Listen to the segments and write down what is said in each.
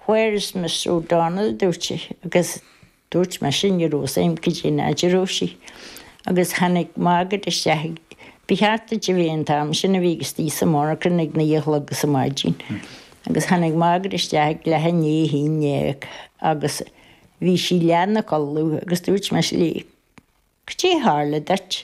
Where is Mr O'Donnell? dúirt sé, agus dúirt mise ní raibh fhios agam cad é an áit a raibh sí. Agus tháinig Margaret isteach ag, ba cheart duit a bheith an t-am sin a bheith istigh sa monarchain ag naoi a chlog ar maidin. Agus tháinig Margaret isteach ag leath i ndiaidh a haon dhéag agus bhí sí leath ina codladh agus dúirt mise léi, cad é tharla duit?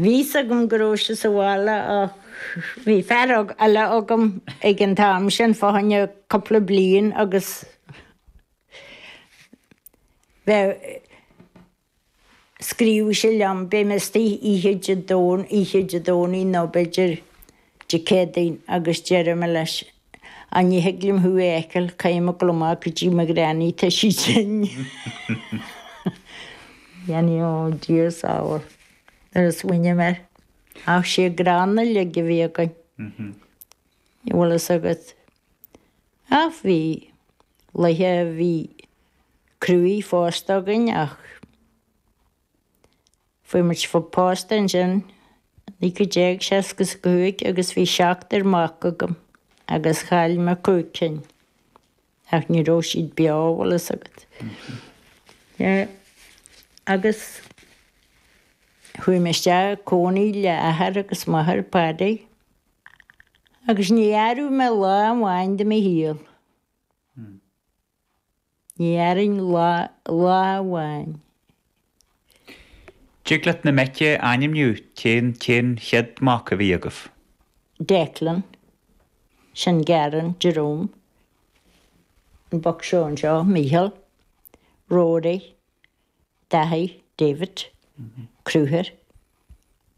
Bhí's agam go raibh sé sa bhaile ach bhí fear eile agam ag an t-am sin fá choinne cúpla bliain agus bheadh, scríobhfadh sé liom, beidh mé istigh oíche Dé Domhnaigh nó b'fhéidir Dé Céadaoin agus deirim leis Á, ní thig liom thú a fheiceáil, caithfidh mé a ghabháil amach go dtí mo granny, tá sí tinn. Jenny, Ó, Dia sábháil, nuair a smaoiním air, ach sin an greann uilig a bhí againn, an bhfuil fhios agat. Ach bhí laethe a bhí cruaidh fosta againn ach. Fuair muid pósta ansin, 1965 agus bhí seachtar mac agam agus chaill mé cúig cinn ach ní raibh siad beo, bhfuil fhios agat. Agus chuaigh mé isteach ag cónaí le athair agus máthair Paddy agus níor athródh mé lá amháin de mo shaol. Ní athróinn lá, lá amháin. Dtig leat na mic a ainmniú, cén, cén chéad mac a bhí agaibh? Declan, sin Garen, Jerome, an boc seo anseo, Micheál, Rory. Daithí, David, Crochúr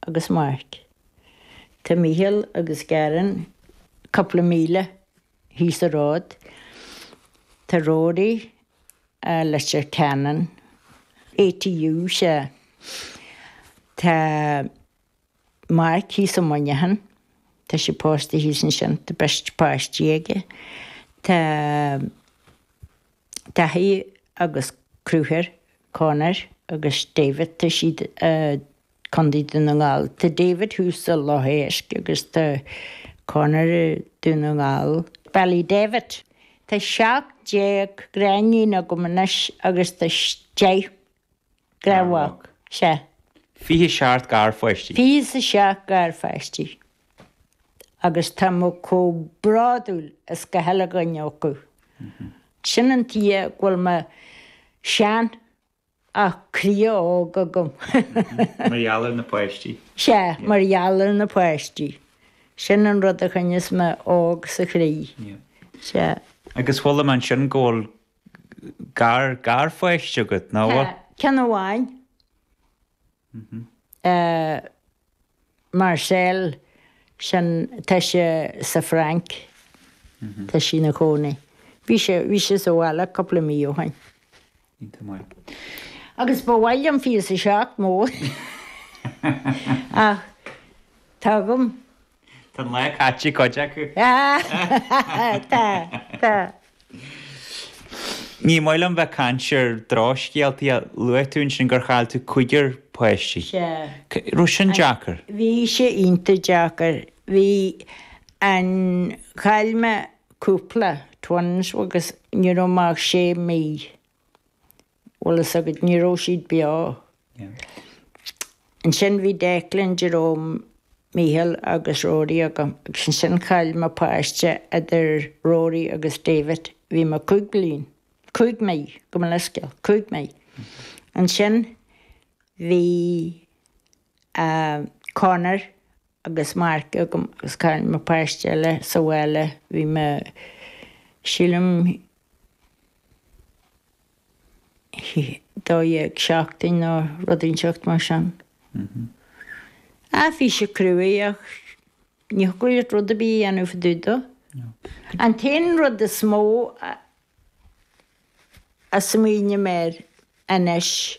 agus Mark. Tá Mícheál agus Garen cúpla míle thíos sa ród. Tá Rory i Leitir Ceanainn. ATU, sea. Tá Mark thíos i Muineachán. Tá sé pósta thíos ansin. Tá beirt páistí aige. Tá. Daithí agus Crochúr, Conor agus David, tá siad i Contae Dún na nGall. Tá David thuas i Loch Éisc agus tá Conor i Dún na nGall. Bualadh David, Tá seacht déag gariníon agam anois agus tá deich garmhac. Sea. Fiche seacht garpháistí. Fiche seacht garpháistí. agus tá mé chomh bródúil as gach uile dhuine acu. Sin an tuige a bhfuil mé sean ach croí óg agam. Mar gheall ar na páistí. Sea, mar gheall ar na páistí. Sin an rud a choinneos mé óg sa chroí. Sea. Agus chuala mé ansin go bhfuil gar, garpháiste agat, an bhfuil? Tá, ceann amháin. Marcel, Sin, tá sé, sa Frainc. Tá sí ina chónaí. Bhí sé, bhí sé sa bhaile cúpla mí ó shoin. Iontach maith. Agus ba mhaith liom é a fheiceáil níos mó, ach tá agam Tá an lá caite ag cuid acu. Tá, tá. Ní maith liom bheith ag caint ar drochscéaltaí ach luaigh tú ansin gur chaill tú cúigear páistí. Sea. An raibh sin deacair? Bhí sé iontach deacair. Bhí an, chaill mé cúpla, twins, agus ní raibh mé ach sé mhí. Bhfuil a fhios agat, ní raibh siad beo. Ansin bhí Declan, Jerome, Mícheál agus Rory agam agus ansin chaill mé páiste idir Rory agus David, bhí mé cúig bliain, cúig mí, gabh mo leithscéal, cúig mhí. Ansin bhí eh Conor Agus Mark agam agus chaill mé páiste eile, sa bhaile, bhí mé, sílim, dó dhéag seachtain nó rud inteacht mar sin. Aiféise croí ach ní thiocfadh leat rud ar bith a dhéanamh i dtaobh dó. An t-aon rud is mó a smaoiním air anois.